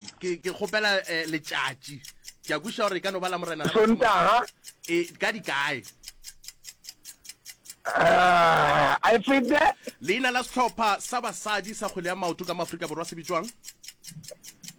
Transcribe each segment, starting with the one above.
Ke, ke kgopela eh, letšatši. Ke a kwiša gore e ka no ba la morena la mašemo. Sontaga. E, ka dikae? Ah, I feel that. Leina la sehlopha sa basadi sa kgwele ya maoto ka Maafrika Borwa se bitšwang?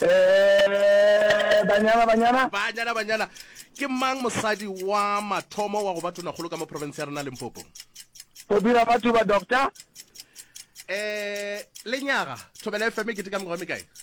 Eh, banyana, banyana. Banyana, banyana. Ke mang mosadi wa mathomo wa go ba tonakgolo ka mo province ya rena Limpopo? Phobira Matuba, doctor. Eh, lenyaga, Thobela FM e keteka mengwaga e mekae?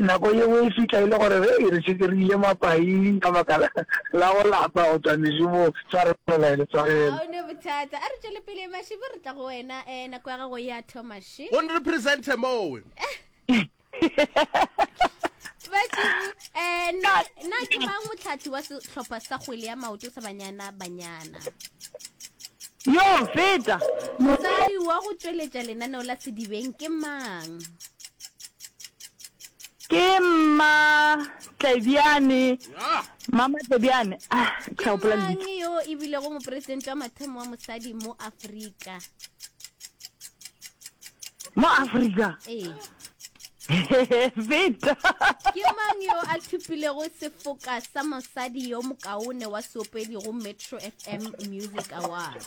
Nako ye nngwe e fihla e le gore re e re šetše re ile mapaing ka baka la go lapa go tšwa mešomong, tshwarelo e le tshwarelo. Ga o ne bothata. A re tšwele pele, Mašibi, re tla go wena. Eh, nako ya gago e a thoma še. Go nre presente mowe. Mašibi, eh, na, na ke mang motlhahli wa sehlopha sa kgwele ya maoto sa Banyana Banyana? Yo, feta! Mosadi wa go tšweletša lenaneo la Sedibeng ke mang? Ke mma Tlebiane. Mama Tlebiane. Ah, ke sa gopola lebitso. Ke yo e bile go mopresidente wa mathomo wa mosadi mo Afrika. Mo Afrika. Ee. Vita. Ke mang yo a thupilego sefoka sa mosadi yo mokaone wa seopedi go Metro FM Music Awards?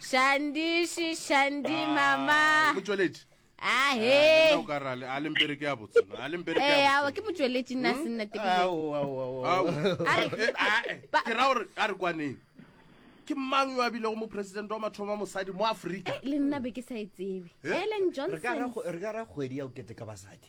Shandishi, Shandi, ah, mama. Motšweletši. Ahe. Ah, eh, o ka rale, a lempere ke ya botse. A lempere ke ya eh, botse. Eh, awa ke motšweletši nna hmm? se nna teng. Awo, awo, awo. Awo. Eh, ke ra gore a re kwaneng. ke mang yo a bilego mo president wa mathomo a mosadi mo aforika eh, le nna be ke sa e tsebe ellen johnson re ka ra kgwedi ya o kete ka basadi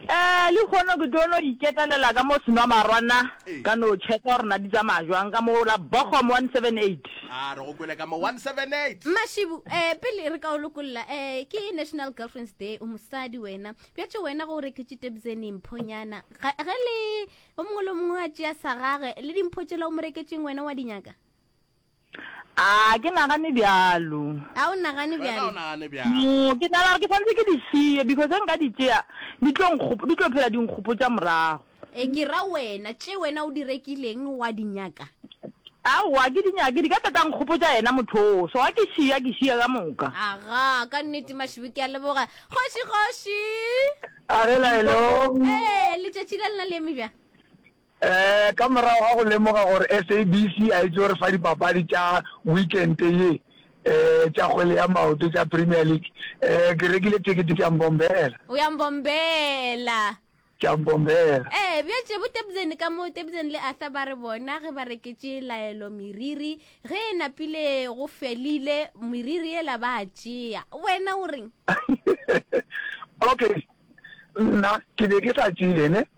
Eh, le hono ke tlo no iketelela ka mo senwa marwana ka no checka gore na di tsamaya jwang ka mo la Bochum 178. a re go kwele ka mo 178 mashibu eh pele re ka o lokolola eh ke national girlfriends day o mosadi wena bjatše wena go o reketše tebzeni mphonyana ga ge le o mongwe le o mongwe a tšea sa gage le dimpho tšela o mo reketšeng wena wa dinyaka A ke nagane bjalo. A o nagane Wena o bjalo. nagane bjang? No, ke nagana gore ke swanetse ke di šie because ge nka di tšea di tlo nkgop-, di tlo phela di nkgopotša morago. E ke ra wena, tše wena o di rekileng wa di nyaka? Aowa, a ke di nyake, di ka tla tša nkgopotša yena motho oo, so ga ke šie, a ke šie ka moka. Aga, ka nnete Mašubu ke a leboga. Kgoši, kgoši! A re la hello. Ee, letšatši la lena le eme bjang? Ka morago ga go lemoga gore SABC a e tlo re fa dipapadi tša weekente ye tša kgwele ya maoto tša Premier League, ke rekile tekete ke a mbombela. O a mbombela. Ke a mbombela. Ee, bja tše bo Tebzeni ka mo. Tebzeni le Arthur ba re bona ge ba reketše laelo meriri, ge e napile go felile, meriri yela ba a tšea. Wena o reng? Okay, nna ke be ke sa tšee, ne.